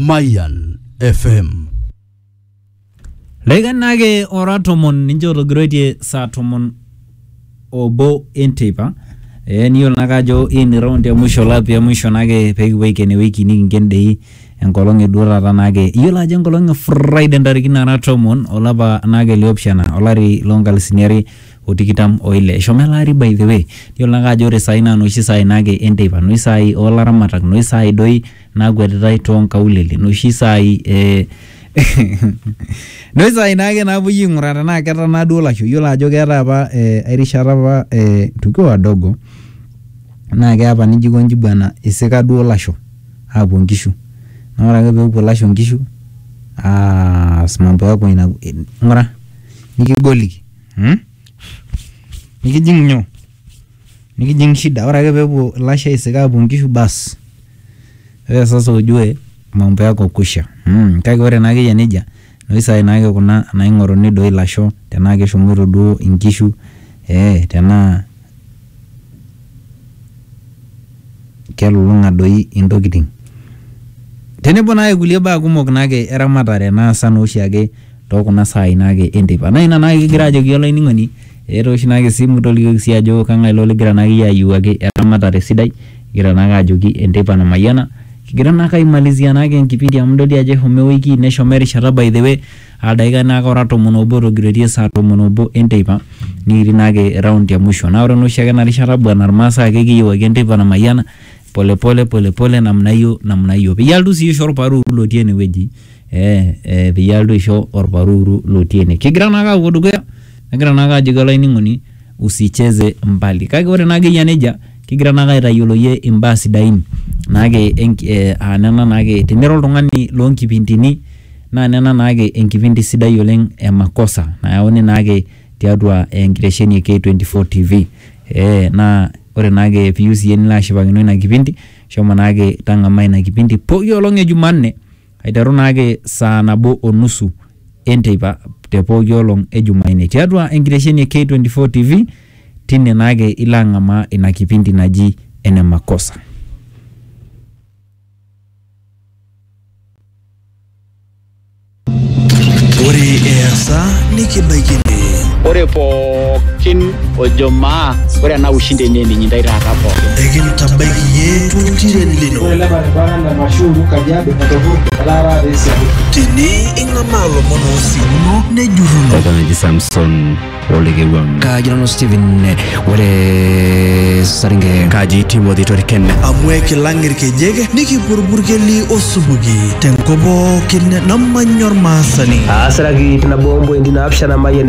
Mayan FM. Leikanake ora tomon ninche otogiroitie saa tomon obo enteipa ee niyiolo nake ajo hii ni round ya mwisho lap ya mwisho nake pekipuo aiken ewiki nikinken dei enkolong e duo taata nake iyiolo ajo enkolong e Friday ntarikini nara tomon olapa nake liopishana olari lonkalisini are o tikitam o ile. Eshomo ele ari by the way. Iyiolo naake ajo ore saai naa noshi saai naake enteipa, noshi saai oo laramatak, noshi saai doi naakwetitai too nkaulele, noshi saai ee noshi saai naake naapuoi aing'uraa tenaa ketanaa duo lasho. Iyiolo ajo keetai apa ai rishata apa ee tukiwa wadogo naake eya apa nijo aikonji bwana isika duo lasho aapuo nkishu naa ore ake peepuo lasho nkishu aas mambo yako ina ng'ura nikigoliki. mm nikijing nyoo nikijing shida ore ake peepuo ilasho aisik apuo inkishu bas ore sasa ujue mambo yako kwisha mm kake ore naa akeyia nejia inoshi saai naake kuna naing'oruni doi ilasho tenaa keshomoito duo inkishu eh tenaa kelulung'a doi intokitin tenebo naake kulie baa kumok naake eramatare naasa naa oshiake tookuna saai naake enteipa naa ina naake kigira ajoki olainining'oni etoosho naake esimu tolikioki sii ajo kang'ae ilo ligira naake iyie ayiewuaki eramatare sidai igira naake ajoki enteipa namayiana kigira naake aimalizia naake enkipindi amu idol dii ajo eshomo ewiki neshomo erishata by the way Ildaikai naake ora tomon obo etogiroitie saa tomon obo e nteipa nikitii naake round e musho. Naa ore naa oshiake ena rishata bwana ilmaasai ake kiyeu ake enteipa namayiana pole pole pole pole namna hiyo namna hiyo. Peyie elotu sii aisho olparuuru lotii ene wueji ee ee peyie elotu aisho olparuuru lotii ene. Kigira naake aapuo dukuya nagira naake ajoki olainining'oni. usicheze mbali kake ore naa akeyia nejia kigira naake aitayiolo iyie imbaa sidain naake enk- eh, aa nena naake tenira oltung'ani loonkipindini naa nena naake enkipindi sidai oleng e makosa nayauni naake tiatua enkitesheni e K24 TV eh, naa ore naake piyieu siiyie nilo ashipakino ina kipindi shomo naake tang'amaa ina kipindi pooki olong e jumanne Aiteru naake saa nabo o nusu e nteipa te pooki olong e Jumaine tiatua enkitesheni e K24 TV, tine naake ilo ang'amaa ina kipindi naji Ene Makosa. Ore easa nikibaikini. Ore pooki pookin ojo maa ore ena ushindi enye ninyi ndai taata pookin ekintabaiki ye toltiren lino tene ing'amaa lomon oosiuno nejurruno Eton eji Samson olekewang. kaji nanu Steven ore saringe Kaji Timothy Toriken. amu ekilang irkejek nikipurburkeli osupuki tenkop pookin namanya ormaasani Aasiraki nabo ompointi naapishana Mayian